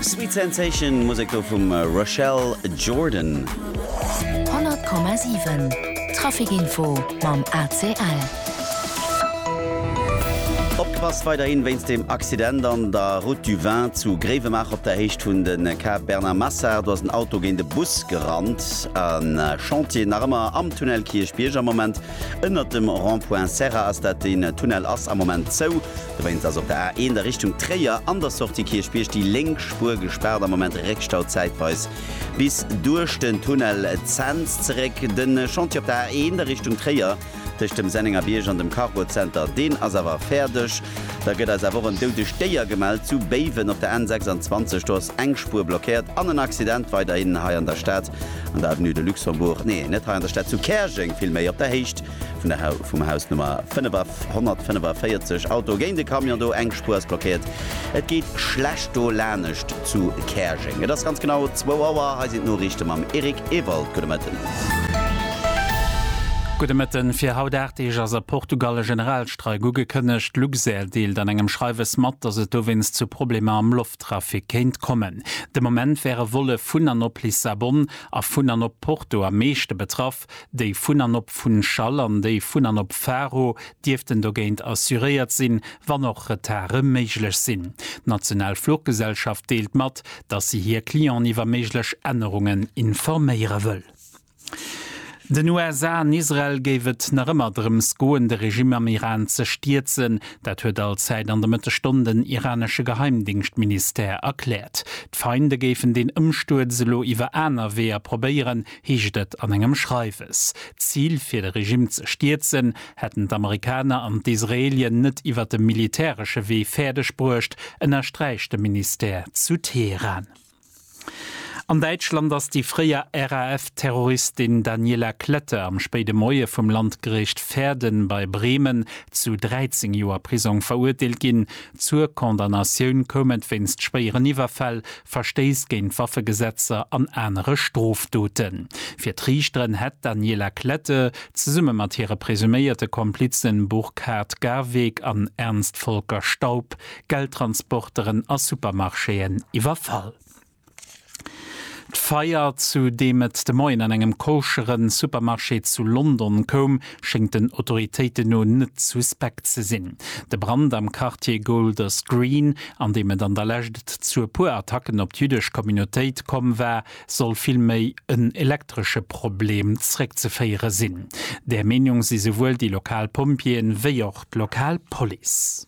Sweet Sensation, Musek do vum Rochelle Jordan. 100,7 Traficinfo mam ACL. Opgepasst weiderhin wéinst dem Accident an der Route du Vin zu Gréiwemaacher op der Héicht vun den Quai Bernard Massard. Do ass en Auto géint e Bus gerannt. En Chantier nach ëmmer am Tunnel Kierchbierg am Moment. Ënnert dem Rond-point Serra ass dat, den Tunnel ass am Moment zou. Dowéinst ass op der A1 a Richtung Tréier an der Sortie Kierchbierg déi lénk Spuer gespaart. Am Moment Réckstau zäitweis bis duerch den Tunnel Zens zeréck. De Chantier op der A1 a Richtung Tréier tëscht dem Sennengerbierg an dem Cargozenter, deen ass awer fäerdeg. Da gëtt eis awer och en doudegt Déier gemellt zu Béiwen op der N26. Do ass eng Spuer blockéiert an en Accident weiderhin hei an der Stad. an der Avenue de Luxembourg, nee, net hei an der Stad, zu Käerjeng villméi, op der Héicht vum Haus Nummer 545. Auto géint e Camion do, eng Spuer ass blockéiert. Et geet schlecht do lanescht zu Käerjeng. Et ass ganz genau zwou Auer. Hei sinn d'Noriichte mam Eric Ewald. Gudde Mëtten. Gudde Mëtten. Fir haut 8 Deeg ass a Portugal e Generalstreik ugekënnegt. Luxair deelt an engem Schreiwes mat, datt et dowéinst zu Problemer am Lofttrafic komm wier. Trafic kéint kommen. De Moment wäre Volle vun an op Lissabon a vun an op Porto am meeschte betraff. Déi vun an op Funchal an déi vun an op Faro dierften dogéint assuréiert sinn, wann och Retarde méiglech sinn. D'national Fluggesellschaft deelt mat, datt si hir Clienten iwwer méiglech Ännerungen informéiere wëll. Den USA an Israel géif et nach ëmmer drëms goen, de Regime am Iran ze stierzen. Dat huet Al Said an de Mëttegstonn den iranesche Geheimdéngschtministère erkläert. D'Feinde géifen deen Ëmstuerz elo iwwer aner Weeër probéieren, heescht et an engem Schreiwes. D'Zil, fir de Regime ze stierzen, hätten d'Amerikaner an d'Israelien net iwwer de militäresche Wee fäerdeg bruecht, ënnersträicht de Ministère zu Teheran. An Däitschland ass déi fréier RAF-Terroristin Daniela Klette am spéide Moie vum Landgericht Verden bei Bremen zu 13 Joer Prisong verurteelt ginn. Zur Condamnatioun koum et wéinst schwéieren Iwwerfäll, Verstéiss géint d'Waffegesetzer an anere Strofdoten. Fir d'Riichteren hätt d'Daniela Klette zesumme mat hire presuméierte Komplizen Burkhard Garweg an Ernst Volker Staub Geldtransporteren a Supermarchéen iwwerfall. D'Feier, zu deem et de Moien an engem koschere Supermarché zu London koum, schéngt den Autoritéiten no net suspekt ze sinn. De Brand am Quartier Golders Green, an deem et an der Lescht zu e puer Attacken op d'jüddesch Communautéit komm war, soll vill méi en elektresche Problem zeréckzeféiere sinn. Där Meenung si souwuel déi lokal Pompjeeën, wéi och d'lokal Police.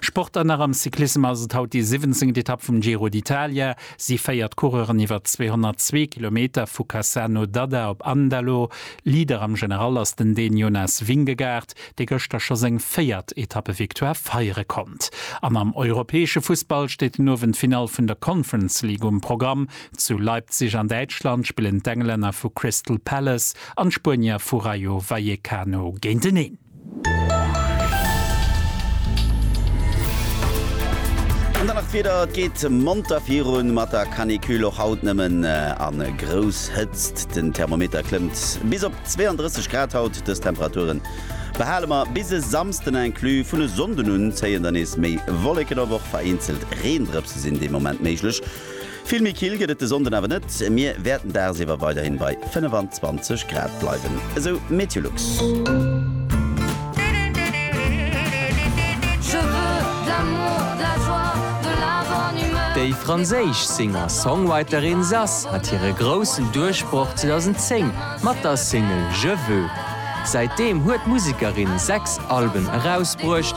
Sport an nach am Cyclissem ass et haut déi siwwenzéngt Etapp vum Giro d'Italia. Si féiert d'Coureuren iwwer 202 Kilometer vu Cassano d'Adda op Andalo. Leader am General ass den Dän Jonas Vingegaard, dee gëschter scho seng véiert Etappe-Victoire feiere konnt. An am europäesche Fussball steet den Owend d'Finall vun der Conference League um Programm. Zu Leipzig an Däitschland spillen d'Englänner vu Crystal Palace an d'Spuenier vu Rayo Vallecano géinteneen. An dann nach d'Wieder, Et geet monter virun mat der Canicule, och haut nëmmen a grouss Hëtzt. Den Thermometer klëmmt bis op 32 Grad haut. Dës Temperature behale mer bis e Samsden inclus. Vun e Sonnden un zéien dann nees méi Wolleken op, och vereenzelt Reendrëpse sinn dee Moment méiglech. Vill méi kill gëtt et de Sonnden awer net, mir wäerten dagsiwwer weiderhin bei 25 Grad bleiwen, esou Meteolux. Déi franséisch Singer-Songwriterin Zaz hat hire groussen Duerchbroch 2010 mat der Single Je veux. Säitdeem huet d'Musekerin sechs Alben erausbruecht.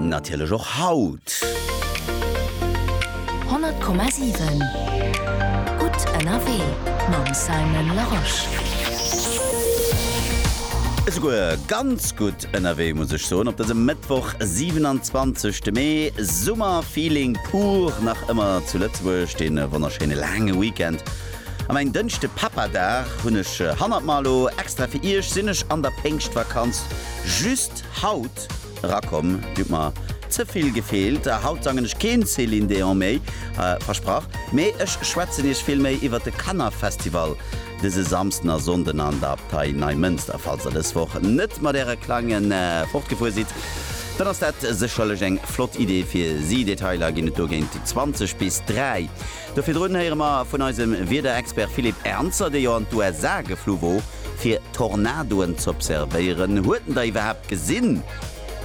Natierlech och haut. 100,7 Gutt ënnerwee mam Simon Larosche. Esouguer ganz gutt ënnerwee, muss ech soen, op dësem Mëttwoch, 27 de Mee. Summer-Feeling pur nach ëmmer zu Lëtzebuerg. Dee wonnerschéine laange Weekend An ein Dënschde Papa Dag hun ech hannert mer. Lo extra fir iech sin ech an der Péngschtvakanz just haut erakomm. Dir hutt mer zevill gefeelt a haut sangen ech keen Céline Déon méi, versprach. Mee ech schwätzen iech vill méi iwwert de Kanner Festival dëse Samsden a Sonnden an der Abtei Neimënster. Falls der dës Woch net mat äre Klange fortgefuer sidd, dann ass dat sécherlech eng flott Idee fir si. Detailer gin et dogéint 20 bis 3. Do virdrun héiere mer vun eisem Wiederexpert Philippe Ernzer, dee jo an d'USA geflu wor fir Tornadoen z'observéieren. Huet en der iwwerhaapt gesinn?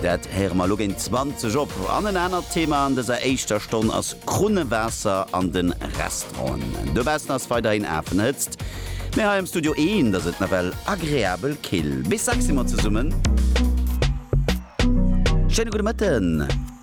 Dat héiere mer elo géint 20 op. An en anert Thema an dëser éischter Stonn ass Krunnewaasser an de Restauranten. Dobaussen ass weiderhin Afenhëtzt, mee hei am Studio Eent ass et nawell agreabel kill. Bis dacks si mer zesummen. Schéine gudde Mëtten.